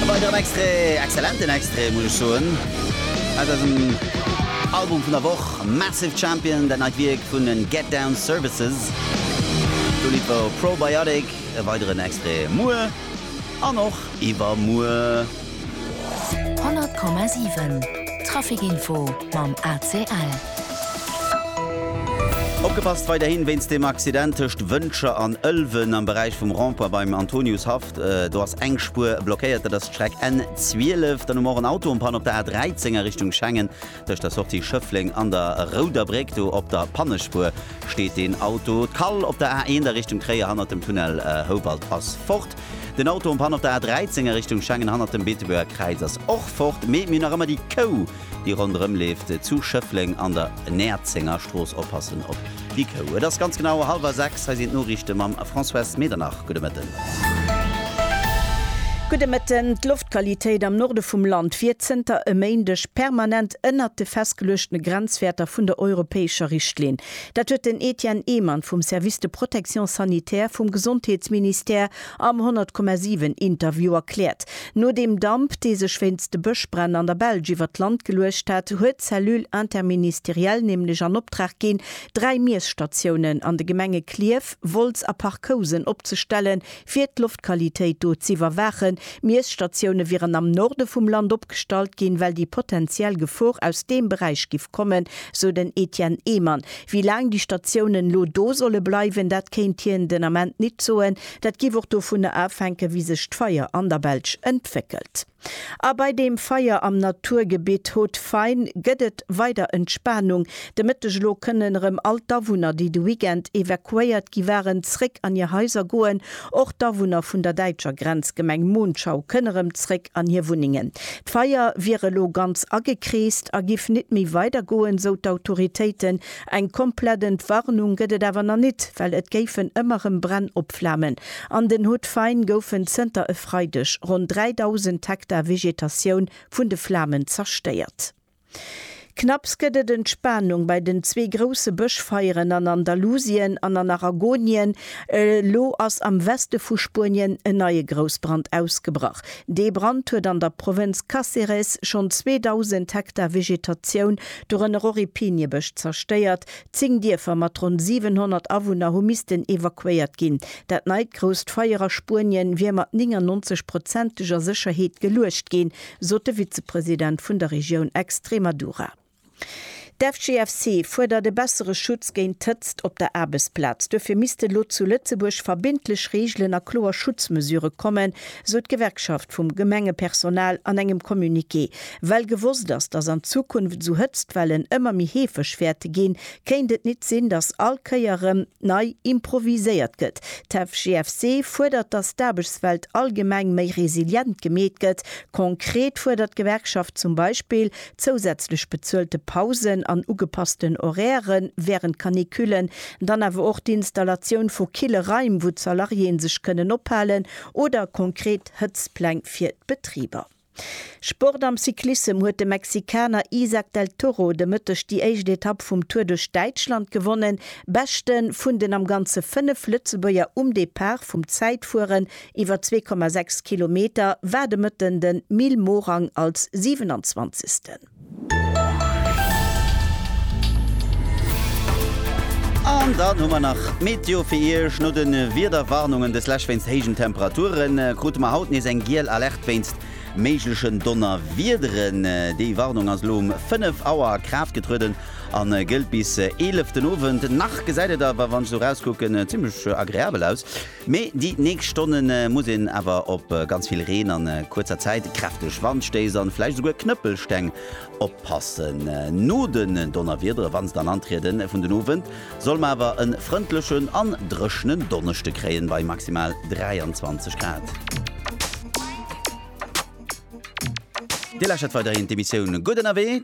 E weideren Extrait, exzellenten Extrait muss ech soen, aus eisem Album vun der Woch, Massive Champion, dat neit Wierk vun den Get Down Services. D'Lidd war Probiotic, e weideren Extrait muer an och iwwermuer. 100,7 Traficinfo mam ACL. Opgepasst weiderhin wéinst dem Accident tëscht Wëncher an Ëlwen am Beräich vum Rond-point beim Antoniushaff. Do ass eng Spuer blockéiert, dat ass d'Streck N12. Dann hu mer och en Auto en Panne op der A13 a Richtung Schengen. Tëscht der Sortie Schëffleng an der Rouder Bréck, do op der Pannespuer steet deen Auto. D'Kall op der A1 a Richtung Tréier hannert dem Tunnel Houwald ass fort. Den Auto en Panne op der A13 a Richtung Schengen hannert dem Beetebuerger Kräiz ass och fort. Mee mir hunn nach ëmmer déi Kou. déi ronderëm leeft, zu Schëffleng an der Näerzengerstrooss. Oppassen op déi Kou. Et ass ganz genau hallwer sechs. Hei sinn d'Noriichte mam Françoise Medernach. Gudde Mëtten. Gudde Mëtten. D'Loftqualitéit am Norde vum Land wier zënter e Méindeg permanent ënnert de festgeluechtene Grenzwäerter vun der europäescher Richtlinn. Dat huet den Etienne Ehmann vum Service de protection sanitaire vum Gesondheetsministère Am 100,7 Interview erkläert, no deem Damp, dee sech wéinst de Bëschbränn an der Belsch iwwer d'Land geluecht hat, huet d'Cellule interministérielle nämlech an Optrag ginn, dräi Miesstatiounen an de Gemenge Klierf, Wolz a Parc-Housen opzestellen, fir d'Loftqualitéit do z'iwwerwaachen. Miesstatioune wieren am Norde vum Land opgestallt ginn, well déi potenziell Gefor aus deem Beräich giff kommen, sou den Etienne Ehmann. Wéi laang déi Statiounen elo do solle bleiwen, dat kéint hien den Ament nit soen. Dat géif och dovunner afänken, wéi sech d'Feier an der Belsch entwéckelt. A bei deem Feier am Naturgebitt Haut-Fain gëtt et weider Entspanung. De Mëtteg elo kënnen erëm all d'Awunner, déi de Weekend evakuéiert gi waren, zréck an hir Haiser goen. Och d'Awunner vun der däitscher Grenzgemeng Monschau kënn erëm zréck an hir Wunnengen. D'Feier wier elo ganz agekreest a giff nit méi weider goen, sou d'Autoritéiten. Eng komplett Entwarnung gëtt et awer nach nit, well et géifen ëmmer erëm Bränn opflamen. An den Hautes-Fagnes goufen zënter e Freideg ronn 3.000 Hektar Vegetatioun vun de Flamen zerstéiert. Knapps gëtt et Entspanung bei den zwee grousse Bëschfeieren an Andalusien an an Aragonien. Elo ass am Weste vu Spuenien en neie Groussbrand ausgebrach. Dee Brand huet an der Provënz Cáceres schonn 2.000 Hektar Vegetatioun, dorënner och ee Piniebësch, zerstéiert. Zéng Dierfer mat ronn 700 Awunner hu missten evakuéiert ginn. Dat neit grousst Feier a Spuenien wier mat 99-prozenteger Sécherheet geluecht ginn, sot de Vizepresident vun der Regioun Extremadura. D'FGFC fuerdert e bessere Schutz géint d'Hëtzt op der Aarbechtsplaz. Duerfir misste elo zu Lëtzebuerg verbindlech Reegelen a kloer Schutzmesure kommen, sou d'Gewerkschaft vum Gemengepersonal an engem Communiqué. Well gewosst ass, datt an Zukunft esou Hëtztwellen ëmmer méi heefeg wäerte ginn, Kéint et nit sinn, dass all Kéier rem nei improviséiert gëtt? D'FGFC fuerdert, dass d'Aarbechtswelt allgemeng méi resilient gemeet gëtt. Konkret fuerdert d'Gewerkschaft zum Beispill zousätzlech bezuelte Pausen an ugepassten Horaire während Canicullen, dann awer och d'Installatioun vu kille Raim, wou d'Salariéen sech kënnen ophalen, oder konkret Hëtztpläng fir d'Betriber. Sport am Cyclissem huet de Mexikaner Isaac del Toro de Mëtteg déi éischt Etapp vum Tour duerch Däitschland gewonnen. Beschte vun den am Ganze 5 Lëtzebuerger um Depart vum Zäitfueren iwwer 2,6 Kilometer war de Mëtten de Mil Morang als 27. An dann hu mer nach d'Meteo fir Iech. No de Wiederwarnungen des Lech wéinst héijen Temperature krute mer haut nees eng giel Alerte wéinst méiglechen Donnerwiederen. Déi Warnung ass elo um 5 Auer a Kraaft getrueden a gëllt bis 11 den Owend. Nach gesäit et awer, wann ech esou erauskucken, zimmlech agreabel aus. Mee déi nächst Stonne muss een awer op ganz vill Reen a kuerzer Zäit, kräfteg Wandstéiss a vläicht esouguer Knëppelsteng oppassen. No den Donnerwiedere, wann se dann antrieden, vun den Owend solle mer awer e frëndlechen an dréchnen Donneschde kréien, bei maximal 23 Grad. Dir lauschtert weiderhin d'Emissioun Gutt Ënnerwee.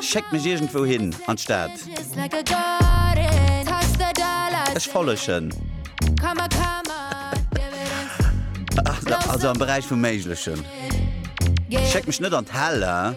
Schéckt mech iergendwou hin an d'Stad. Ech follegen. Also am Beräich vum Méiglechen. Schéckt mech net an d'Hell.